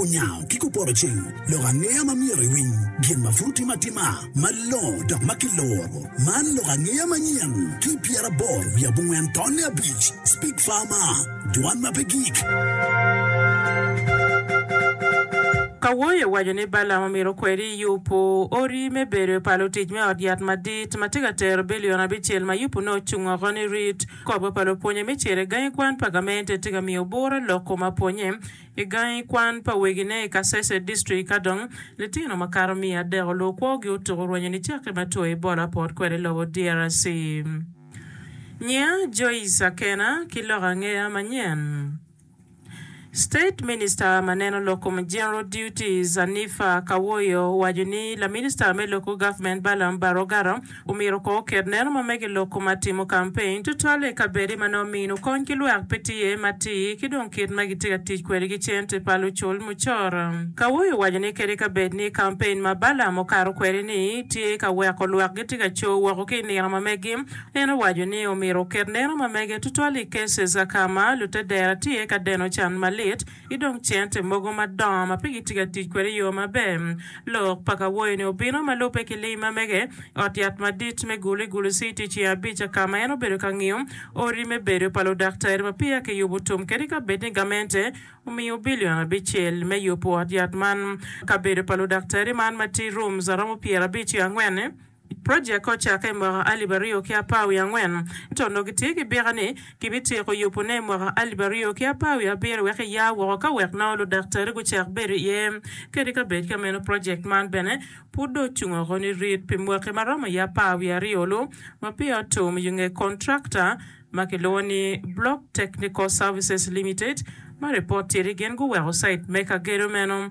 Onyango ki kupoto cing lok angeya ma myero iwiny gin ma pud otime atima malongo dok ma kiloro. Man lok angeya manyen ki pyeraboro wiye abongwen tonne abic, Speak Farmer, Dwan ma pe gik. Kawoyo owaco ni Balaam omito kwede Yupu odi me bedo pa lutic me ot yat madit ma tye ka tero bilion abicel ma Yupu nongo ocung oko ni rit. Kop pa lupwonye me ciro i gangi kwan pa gamente tye ka miyo obura lok kom apwonye. I gangi kwan pa wegine i Kasese District ka dong litino makato miya adek oluwo kwogi otuko rwenyo nicakke ma two Ebola pot kwede i lobo DRC. Nyiya Joyce Akena ki lok angeya manyen. State Minister ma neno lok kom General Duties Anifah Kawoyo owaco ni Laminista me Local Government Balaam Barogara Omyero ko oket neno ma mege lok kuma timo campaign tutwalle ikabede ma nongo mino kony ki lwak pe tye, matir ki dong kit ma gitye ka tic kwede ki cente pa lucul mucoro. Kawoyo owaco ni kadi kabed ni campaign ma Balaam okato kwede ni tye ka weko lwak gitye ka co woko ki inino ma megi, en owaco ni omyero oket neno ma mege tutwalle i cases akama lutedera tye ka deno can malit, ki dong cente mogo madongo ma pe gitye ka tic kwede i yo maber. Lok pa kawoyo-ni obino ma lubbe ki lim ma mege i ot yat madit me Gulu i Gulu Citi i Ceng Abica ka ma en obedo ka ngiyo odi me bedo pa ludaktari ma peya kiyubo tum kadi ka bed ni gamente omiyo bilion abicel me yubo ot yat man. Kabedo pa ludaktari man ma tye rooms aromo pyerabic ki angwen. Project-ki ocakke i mwaka alip aryo ki apar wiye angwen, ento onongo gitye ki bika ni gibityeko yubone i mwaka alip aryo ki apar wiye abiro wek eya woko ka wek nongo ludaktari gucak bedo iye kede ka bed ka meno project man bene pud dong ocung oko nirit pi mwaki ma romo i apar wiye aryo-lu ma peya otum i nge contractor ma kilwongo ni Block Technical Services Limited ma ripot tye ni gin guweko cite me ka gedo meno.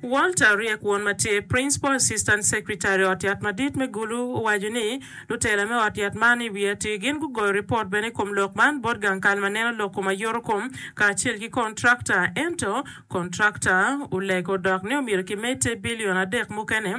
Walter Riek Won ma tye Principal Assistant Secretary ot yat madit me Gulu owaco ni lutela me ot yat man i wi atir gin gugoyo ripot bene i kom lok man bot gang kal ma neno loko ma yoto kom kacel ki contractor ento contractor olego dok ni omyero kimedde bilion adek mukene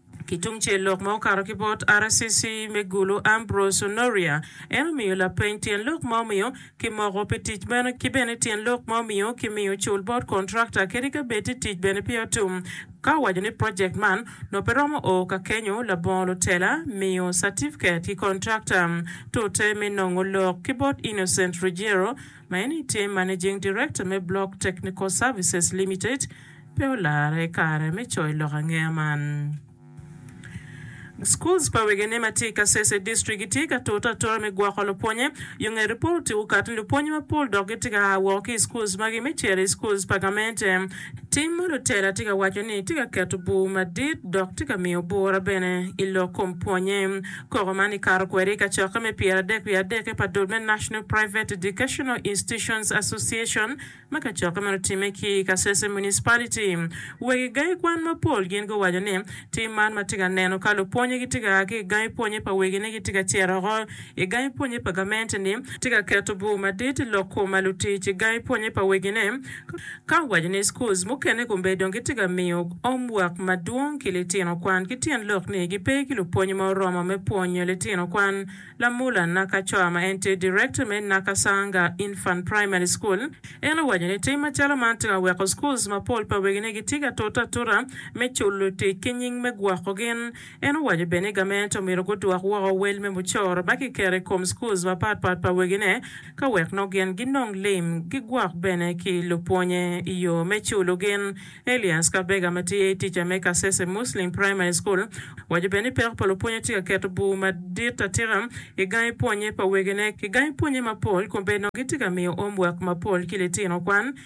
Ki tungcel lok ma okato ki bot RCC me Gulu Ambrose Onoria en omiyo lapeny tyen lok ma omiyo ki moko pi tic meno ki bene tyen lok ma omiyo ki miyo ocul bot contractor kadi ka bed ni tic bene peya otum ka owaco ni project man nongo pe romo oo ka kenyo labongo lutela miyo certificate ki contractor tute me nongo lok ki bot Innocent Ruggiero Ma eni tye Managing Director me Block Technical Services Limited pe olarre kare me coyo lok angeya man. Schools pa wegine ma tye i Kasese District gitye ka tute atura me gwoko lupwonye yo nge ripot okato ni lupwonye mapol dok gitye ka aa woko ki i schools magi me cito i schools pa gamente. Tim ma lutela tye ka waco ni tye ka keto bur madit dok tye ka miyo bura bene i lok kom pwonye. Koko man ikato kwede i kacokke me pyeradek wiye adek pa dul me National Private Educational Institutions Association ma kacokke man otimme ki i Kasese Municipality. Weg i gangi kwan mapol gin guwaco ni tim man ma tye ka neno ka lupwonye gitye ka a ki i gangi pwonye pa wegine gitye ka cito oko i gangi pwonye pa gamente-ni, tye ka keto bur madit i lok kom ma lutic i gangi pwonye pa wegine Ka waco ni schools mukene kombe dong gitye ka miyo home work madwong ki litino kwan ki tyen lok ni gipe ki lupwonye ma oromo me pwonyo litino kwan, Lamula Nakachoa ma en tye Director me Nakasanga Infant Primary School en owaco ni tim macalo man tye ka weko schools mapol pa wegine gitye ka tute atuta me culo tic ki nying me gwoko gin. En owaco bene ni gamente omyero gudwok woko wel me mucoro ma kiketo i kom schools mapatpat pa wegine, ka wek nongo gin ginong lim, gigwok bene ki lupwonye i yo me culo gin. Elias Kabega ma tye tica me Kasese Muslim Primary School owaco bene ni peko pa lupwonye tye ka keto bur madit atika i gangi pwonye pa wegine ki gangi pwonye mapol kun bene nongo gitye ka miyo omwek mapol ki litino kwan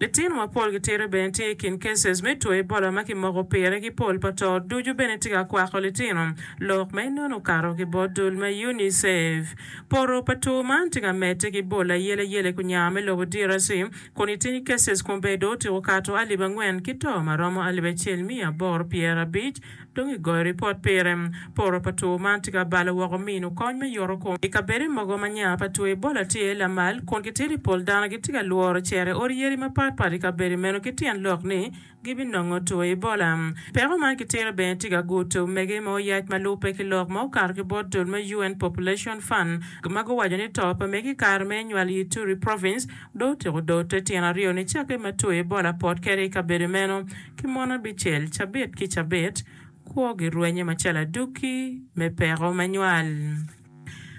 Litino mapol gitito bene tye ikin cases me two Ebola ma kimoko pire ki pol pa to ducu bene tye ka kwako litino. Lok ma inono okato ki bot dul ma UNICEF. Poto pa two man tye ka medde ki bol ayelayela i kunya me lobo DRC kun itin cases kun bene dong otiko kato alip angwen ki to maromo alip acel miya aboro pyer abic Dong i goyo ripot pire, poro pa two man tye ka balo woko mino kony me yoto kom. I kabede mogo ma nya pa two Ebola tye iye lamal, kun gitito i pol dano gitye ka lworo cere odi yadi mapat pat i kabede meno ki tyen lok ni gibinongo two Ebola. Peko man ki tira bene tye ka guto omege ma oyac ma lubbe ki lok ma okato ki bot dul me UN Population Fund ma guwaco ni to pa mege i kare me nywal i Ituri Province dong otyeko doo te tyen aryo nicakke ma two Ebola pot kede i kabede meno. Ki mono abicel cabit ki cabit, kwogi rwenye macalo aduki me peko me nywal.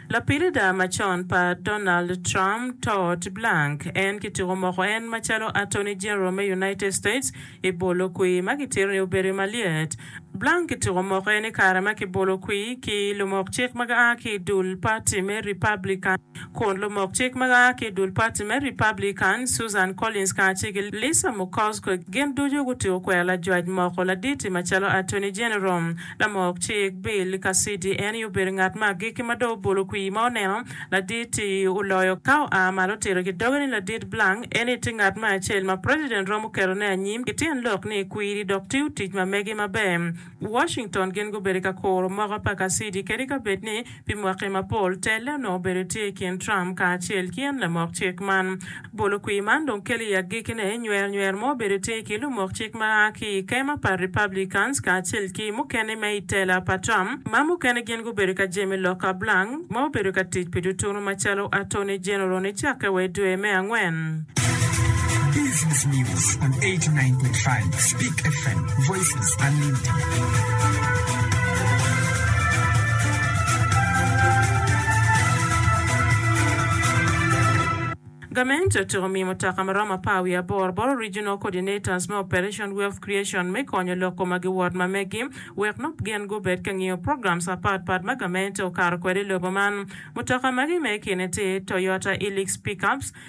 Lapilida macon pa Donald Trump, Todd Blank, en ki tuko moko en macalo Attorney General me United States i bolo kwir ma kitito ni obedo malyet. Blank ki tuko moko en i kare ma kibolo kwir ki lumok cik ma gia ki i dul pati me Republican. kun lumok cik ma a ki i dul pati me Republican, Susan Collins kacel ki Lisa Murkowski, gin ducu gutyeko kwero lajwac moko ladit-ti macalo Attorney General. Lamok cik Bill Cassidy en aye obedo ngat me agikki ma dong obolo kwir ma oneno ladit-ti oloyo ka oa malo otito ki doge ni Ladit Blank en-ni tye ngat me acel ma president romo ketone anyim ki tyen lok ni kwiri dok tiyo tic ma mege maber. Washington gin gubedo i ka kuro moko pa kacidi kadi ka bed ni pi mwaki mapol telle onongo obedo tye i kin Trump kacel ki en lamok cik man. Bolo kwir man dong kelo i agikki ne nywer nywer mo obedo tye ki lumok cik ma a ki i kema pa Republicans kacel ki mukene me i tela pa Trump ma mukene gin gubedo ka jemi loka Blank ma obedo ka tic pi tutunu macalo Attorney General nicakke wa i dwe me angwen. Business News on 89.5 Speak FM, Voices Unlimited. Gamente otyeko miyo mutoka ma romo apar wiye aboro boro Regional Coordinators me Operation Wealth Creation me konyo lok koma gi wod ma megi wek nop gin gubed ka ngiyo programs apat pat ma gamente okato kwede i lobo man. Mutoka magi me kine tye Toyota Hilux Pickups,